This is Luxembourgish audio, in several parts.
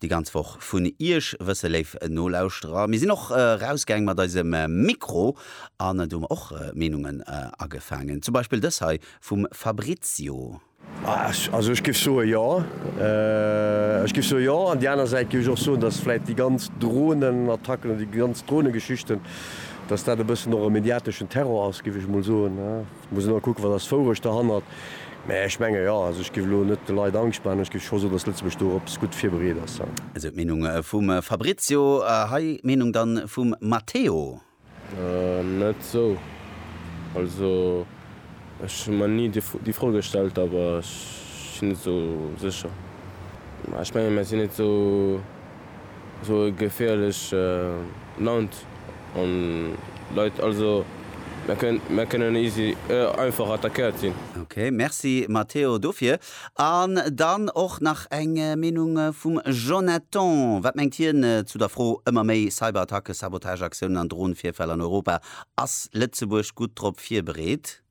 Déi ganz Woch vun Iech wësse, léif Nolauschterer. Mir sinn och erausgaang mat eisem Mikro an do hu mer och Meenungen agefaangen. Zum Beispill dës hei vum Fabrizio. Also ech géif soe jo. Ech géif soe jo. An déi aner Säit géif ech och soen, datt vläit déi ganz Dronenattacken oder déi ganz Dronegeschichten, datt dat e bëssen och e mediateschen Terror ass, géif ech emol soen. Muss elo kucken, wat ass d'Wourecht derhannert. Mä ech menge jo, also ech géif elo net de Leit Angscht maachen, ech géif scho soen, datt Lëtzebuerg do op gutt virbereet ass. Esou d'Meenung vum Fabrizio. Hei d'Meenung dann vum Matteo. Net esou. Also ech hu mer ni déi Fro gestellt, awer ech si net esou sécher. Mä ech menge mer sinn net esou. Esou e geféierlech Land an Leit, also mär kënnen easy einfach attackéiert ginn. Ok, merci Matteo dofir. An dann och nach eng Meenung vum Jonathan. Wat mengt hien zu der Fro, ëmmer méi Cyberattacken, Sabotageaktiounen an Drohnenvirfäll an Europa, ass Lëtzebuerg gutt drop virbereet?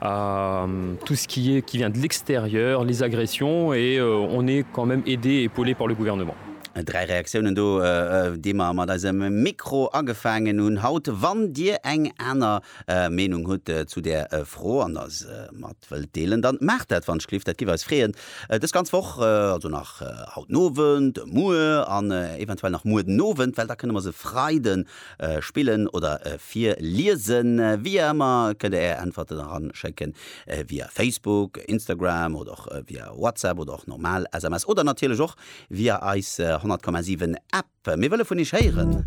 à tout ce qui est qui vient de l'extérieur, les agressions et on est quand même aidé et épaulé par le gouvernement. Dräi Reaktiounen do, déi mer mat eisem Mikro agefaangen hunn haut. Wann Dir eng aner Meenung hutt zu där Fro an eis mat wëllt deelen, dann maacht dat wanschliff. Dat giff eis freeën. Dës ganz Woch, also nach haut den Owend, muer an eventuell nach muer den Owend, well da kënne mer se Freiden spillen oder virliesen. Wéi ëmmer kënnt der är Äntwerten eran schécken via Facebook, Instagram oder och via WhatsApp oder och normal SMS oder natierlech och via eis 100,7 App. Mir wëlle vun iech héieren.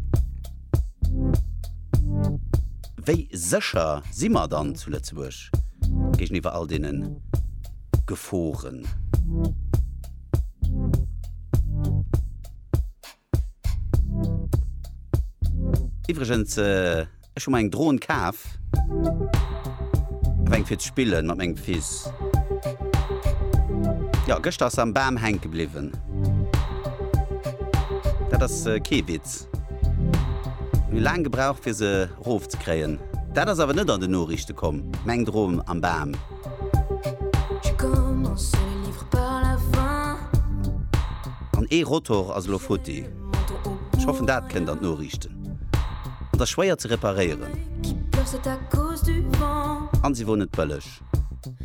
Wéi sécher si mer dann zu Lëtzebuerg géigeniwwer all deene Geforen? Iwregens ech hu mer eng Drohn kaaf, awer eng fir ze spillen mat mengem Fils. Jo, gëschter ass se am Bam hänke bliwwen. Dat ass kee Witz. Mir hu laang gebraucht fir se rof ze kréien. Dat ass awer net an den Noriichte komm, meng Drohn am Bam. An ee Rotor ass elo futti. Ech hoffen dat kënnt an d'Noriichten. An t'ass schwéier ze reparéieren. An se wor net bëlleg.